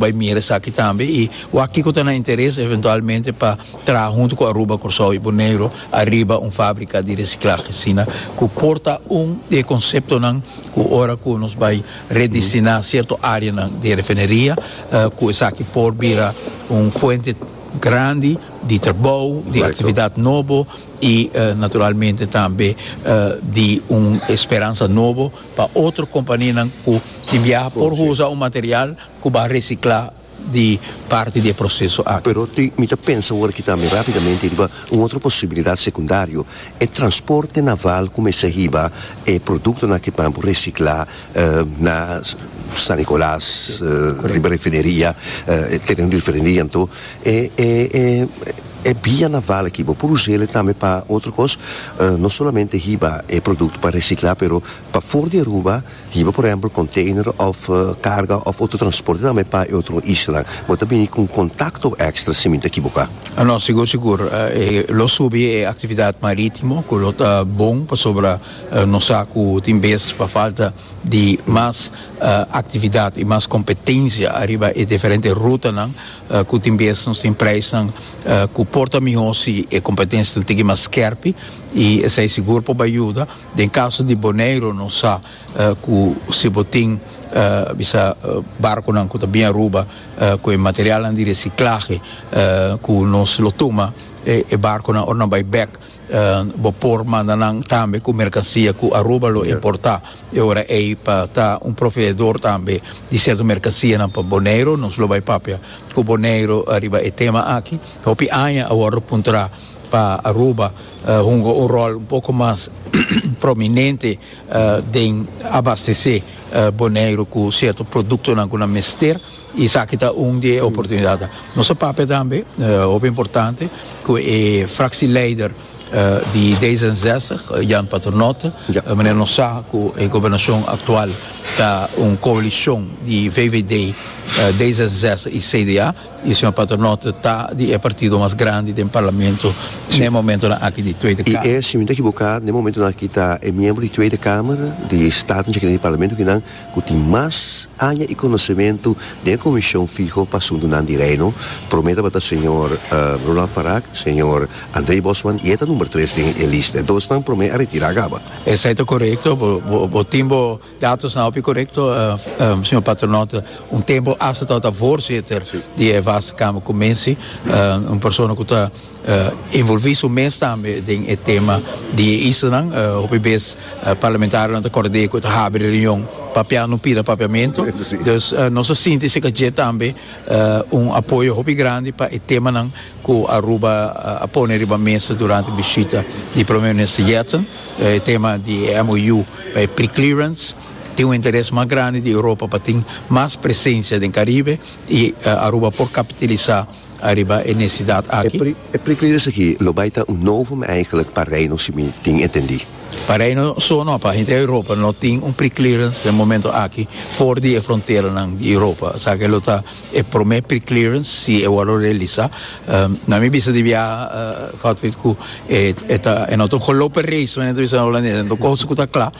Bai mira esaki tambe y wak kico ta nan interes eventualmente pa traha hunto cu Aruba, Corsou y Boneiru ariba un fabrica di reciclahe asina cu por ta un di e conceptonan cu ora cu nos bai redestina cierto areanan di e refineria cu esaki por bira un fuente grandi di trabou, di actividad nobo y naturalmente tambe di un esperansa nobo pa otro companianan cu tin biaha por usa un material. cu ba recicla di parti di e proceso aki. Pero tin, mi ta pensa awor aki tambe rapidamente riba un otro posibilidad secundario, e transporte naval cu mester hiba e productonan aki pan por recicla na San Nicolas, riba refineria, teren refineria anto e bia naval aki bo por usele tambe pa otro cos, no solamente hiba e producto pa recicla pero pa for di Aruba. Hiba por ehempel container of carga of otro transporte tambe pa e otro isla bo ta bini cu un contacto extra si mi ta equivoca? No, sigur sigur e lo subi e actividad maritimo cu lo ta bon pasobra nos sa cu tin bes pa falta di mas actividad y mas competencia ariba e diferente rutanan cu tin bes nos tin prijsnan cu por ta miho si e competencia tin tigi mas skerpi y esai sigur por bay yuda. Den caso di Boneiro nos sa cu si bo tin bisa barconan cu ta bien Aruba cu e materialnan di reciclahe cu nos lo tuma e barconan ora nan bay bek bo por manda nan tambe cu mercancia cu Aruba lo importa e ora ey pa ta un proveedor tambe di cierto mercancianan pa Boneiro nos lo bay papia cu Boneiro ariba e tema aki hopi aña a wordo puntra pa Aruba. hunga un rol un poko mas prominente den abastece Boneiru cu cierto productonan cu nan mester y esaki ta un di e oportunidadnan. Nos ta papia tambe, hopi importante, cu e fractieleider di D zesenzestig, Jan Paternotte, manera nos sa cu e gobernacion actual ta un coalition di VVD, D zesenzestig y CDA, E señor Paternotte ta di e partido mas grandi den Parlamento n'e momentonan aki di Tweede Kamer. I e, si mi no ta ekiboká, n'e momentonan aki ta e miembro di Tweede Kamer di Staten Generaal di Parlamento kinan ku tin mas aña i konosementu den e Komishon Fiho pa Asuntunan di Reino. Promé tabata señor Roland Farag, señor André Bosman i e ta number tres den e lista. E dosnan promé a retirá kaba. Esei ta korekto. Bo tin bo. Datosnan hopi korekto, señor Patronaut. Un tempu hasta ta tabata voorzitter di e vaste kamer ku Mensi, un persona ku ta envolvi su mes tambe den e tema di e islanan. Hopi bes parlamentarionan ta kòrd'é ku e ta habri reunion papia no pida papiamentu. Dus nos ta sinti si ka dje tambe un apoyo hopi grandi pa e temanan ku Aruba a pone riba mesa durante bishita di Primer Minister Yetten, e tema di e MOU. Pa e preclearance tin un interes mas grandi di Europa pa tin mas presencia den Caribe y Aruba por capitalisa riba e necesidad aki. E preclearance aki lo bay ta un novum eigenlijk pa Reino si mi tin entendi. Pa Reino so no, pa henter Europa no tin un preclearance den momento aki for di e fronteranan di Europa, esaki lo ta. E prome preclearance si e wòrdu realisá. Nan mi bisa di biaha Godfried ku e e ta e no ta un gelope race men e ta bisa na Holandes nan ta koho su ku ta kla.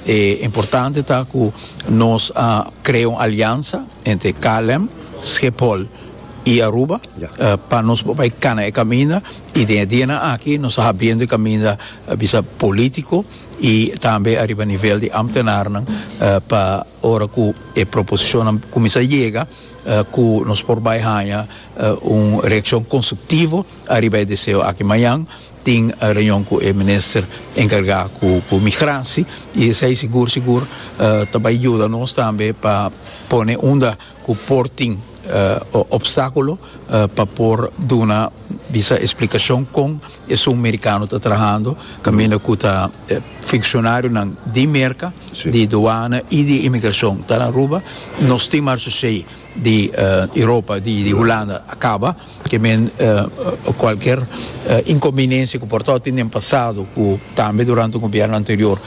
E importante ta ku nos a krea un aliansa entre KLM, Schiphol i Aruba pa nos por bai kana e kaminda i den e dianan aki nos ta habriendo e kaminda bisa polítiko i tambe ariba nivel di ámtenarnan pa ora ku. e proposishonnan kuminsá yega ku nos por bai haña un reakshon konstruktivo ariba e deseo aki. Mañan tin reunion ku e minister enkargá ku migransi i esei sigur sigur ta bai yuda nos tambe pa pone unda ku por tin opstákulo pa por duna bisa splikashon kon Esun mericano ta trahando caminda cu ta funcionarionan di Merca, di Douana y di Inmigracion ta na Aruba. Nos tin marchashey di Europa, di Hulanda a caba. Ke men cualkier inconveniencia cu por a tin den pasado cu tambe durante gobierno anterior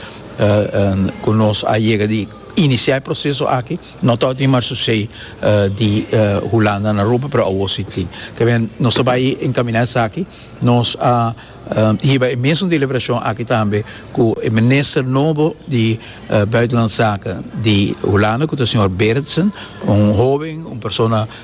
cu nos a yega di inicia e proceso aki no ta tin marchashey di Hulanda na Aruba pero awo si tin. Ke men nos ta bay encamina esaki. Nos a hiba e mesun deliberashon aki tambe ku e minister nobo di Buitenlandse Zaken di Hulanda ku ta señor Berendsen, un hoben, un persona